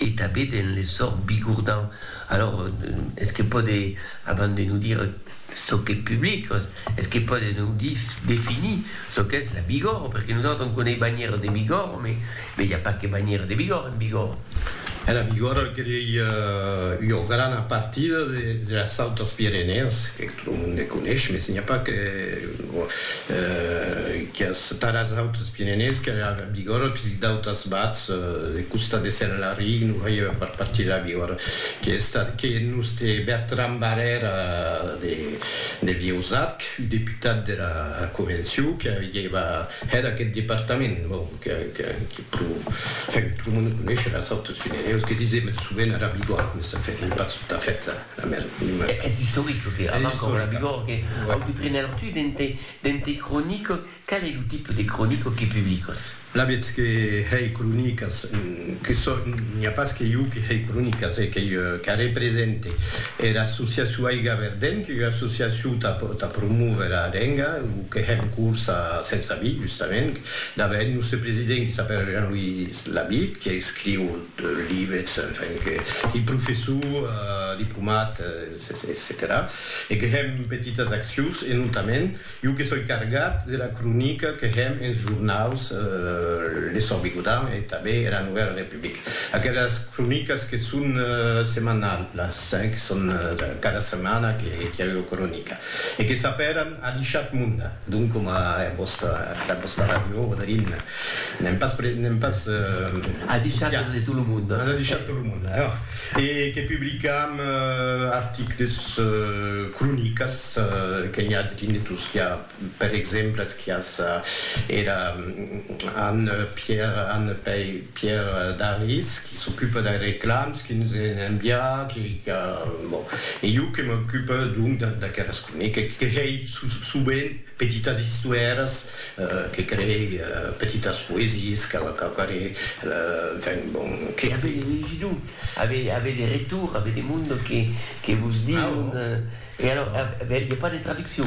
E tabé den le sòrt bigourdan. Alors, es que pòde, abans de nous dire çò qu'es public, es que pòde nous dire, definir çò qu'es la Bigòrre, perque nosautres on coneis banhièra de Bigòrre, mais mais i a pas que banhièra de Bigòrre en Bigòrre. E la Bigòrre qu'ei ua grana partida de las Autes Pirenèas, Lo monde conesh, mes n'i a pas que qu'as taras autes pirenés que la Bigòrra, pisit d'autas bats de costat de Senelaric, non veieu a part partir de la Bigòrra, que estat que nos te Bertran Barrèra de de Vieusat, que fut deputat de la Convencion, que avieva hèt aqueth departament, bon, que que que pro, enfin, que tot lo monde conesh eras autes pirenèus, que disem sovent era Bigòrra, mes enfin, non pas tot a fait ça. A mèr, li mai. Es istoric lo que avant qu'aurò la vigor que au de prener tu dente dente cronico, qual ei lo tipe de cronico que publicos? La vètz que hèi cronicas que son n'i a pas que iu que hèi cronicas e qu'ei qu'a represente era associacion Aiga Verdent qu'ei ua associacion tà tà promóver era lenga lo que hèm curs a Sens Avis justament d'a vèi eth nòste president qui s'apèra Jean-Louis Labitte que escriu Liebets, enfin, que li professor diplomat, etcetèra E que hèm petitas accions, e notament, jo que soi cargat de la cronica que hèm ens jornaus Le Sòrt Bigodan e tanben era Novèla Republica, aquelas cronicas que son semanalhas, que son cada setmana qu'i a ua cronica, e que s'apèran Adishat Munda. Donc coma era vòsta, era vòsta radiò Darin, n'èm pas pre, n'èm pas viat. A deishat tot e tot lo monde. A deishat tot lo monde, alors. E que publicam articles, cronicas, que n'i a drin de Tosquiá, per exemple, es quias era Anne Pierre, Anne Pei, Pierre Daris, qui s'ocupe dei reclams que nos èn enviats, que, qu'a, bon, e jo que m'ocupe, donc, d'aqueras croneques, que hèi sovent petitas istoèras, que creei petitas poesies, quauquarre, enfin, bon, que. E avètz de legir-lo, avètz de retorn, avètz de monde que vos diu. E alors, aviá pas de traduccion?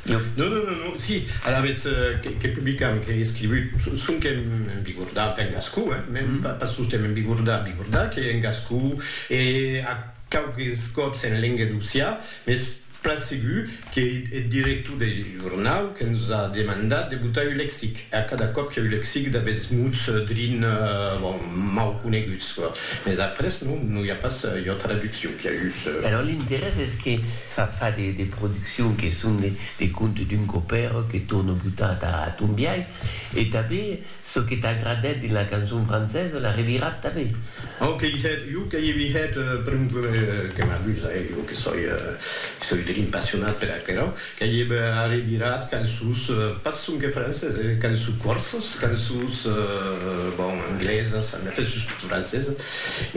Non, non, non, non, si, alavetz que publicam, qu'ei escrivut, sonque en bigordà, enfin en gascon, hein, mèn pas sosten en bigordà, bigordà, qu'ei en gascon, e a quauques còps en lenga d'Ossià, mès plan segur qu'ei eth director deth jornau que nos a demandat de botar un lexic. E a cada còp qu'èu lexic d'avetz muts drin, bon, mau coneguts, mes après non, non i a pas ua traduccion qu'a us. E alors l'interès es que fa fa de de produccions que son de de contes d'un copèro que torno botar ta ton biais e tanben çò que t'agradèt dins la cançon francesa la revirat tanben. Au que i hèt, iu que i hèt, pr'un que m'amusa, e iu que soi, que soi drin passionat per aquerò, Qu'ei eb arribirat qu'en sus, pas sonque francés, eh, qu'en sus corses, qu'en sus, bon, anglesas, en efèth sus tot francesas.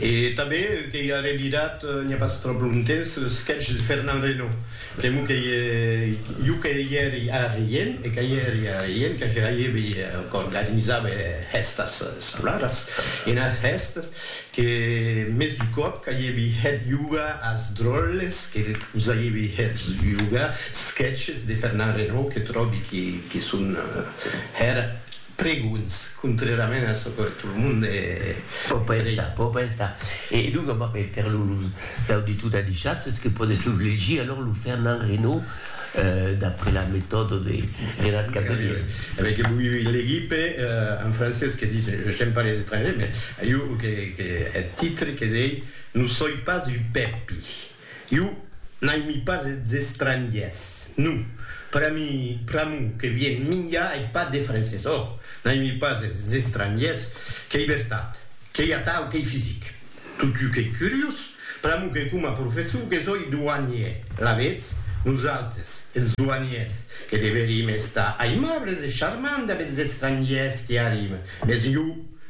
E tanben qu'ei arribirat, n'i a pas tròp longtemps, eth sketch de Fernand Reynaud. Pr'amor qu'ei jo que i èri a Rient, e que i èri a Rient, que hèibi, qu'organizava es hèstas escolaras, enas hèstas, Que mès du còp qu'aievi hèt yoga as dròlles que vos aievi hèt yoga, sketches de Fernand Reynaud que tròbi que son hèr pregonhs, contrèrament a çò que tot lo monde pò pensar, pò pensar. E donc, per los auditors d'Adishatz, es que pòdes lo legir, alors, lo Fernand Reynaud. d'après la metòda de Gérard Cavelier. Avei que voi legir per un francés que ditz, j'aime pas les étrangers, mais iu que eth titre que dei non soi pas un pèpi. Iu n'aimi pas es estrangiers. Non, pera mi, pr'amor que vien minjar ei pas de francés. Ò, n'aimi pas es estrangiers, qu'ei vertat, qu'ei atau, qu'ei fisic. Totiu qu'ei curiós, Pr'amor que coma professor que soi douanier, alavetz, nosautres, es douaniers, que deverim estar aimables e charmants damb es estrangiers qui arriben, mès jo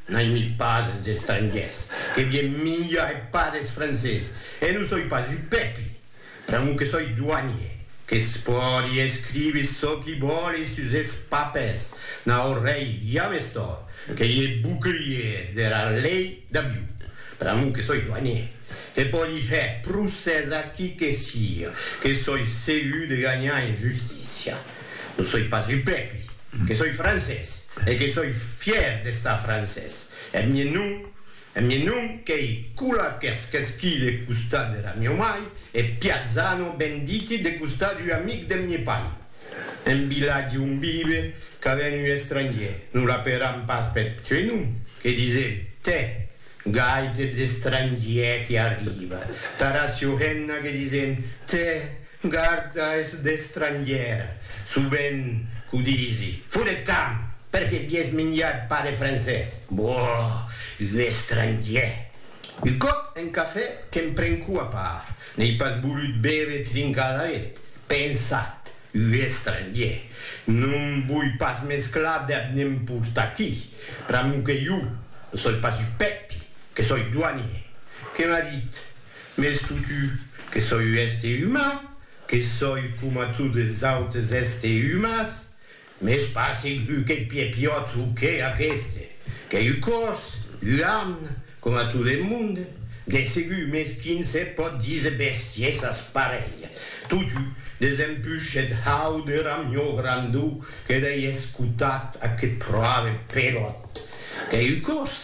n'aimi pas es estrangiers, que vien minjar e pas des francés, e non soi pas un pèpi! Pr'amor que soi doanier, que's pòdi escrive çò qui vòle sus es papers, n'a ò rei james tòrt, qu'ei e bouclier dera lei d'avion. Pr'amor que soi doanier, que pòdi hèr procès a qui que sia, que soi segur de ganhar en justícia. Non soi pas un pèpri, que soi francés e que soi fièr d'estar francés. Eth mien nom E mi non qu'ei cula qu'ètz qu'esquí de costat dera mieu mai, e piatzano ben diti de costat ua amic deth mie pai. En vilatge on vive, qu'a ven ua estrangier, non la peram pas peth pseunom, que disem, tè, gai t'ètz estrangier qui arriva, tara siohenna que disem, tè, Garda es d'estrangièr, sovent qu'o disi. Fo de camp, perque bies minjat pas de francés. Boh! Un estrangièr! Un còp en cafè que'm prenco a part, n'ei pas volut bève trincadaret, pensat, un estrangièr! Non voi pas mesclar dab n'emportaqui. Pr'amor que jo, ne soi pas un pèpi, que soi doanier. Que m'a dit, Mès totu, que soi un èster uman, que soi coma totes es autes èsters umans, mès pas segur qu'eth piè piòt o qué aqueste, qu'ei un còrs, un amn, coma tot eth monde, de segur, mès quin se pòt díser bestiesas parelhas? Totu, desempush eth hau de ramió grandó que dei escotat, aqueth proave peròt, qu'ei un còrs.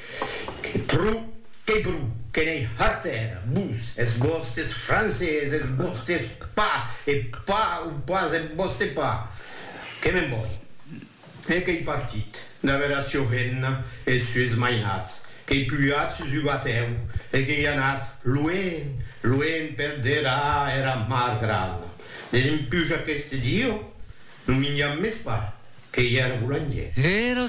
Que pro, que bru, que n'ei harter, vos, es vòstes francés, es vòstes pas, e pas o pas en vòste pas. Que me'n voi. E qu'ei partit, d'aver a Sioghenna e es sues mainats, qu'ei pujat sus u batèu e qu'ei anat luenh, luenh per der a era mar grana, Desempuja qu'este dieu, non minjam mès pas, qu'ei era boulanger. Era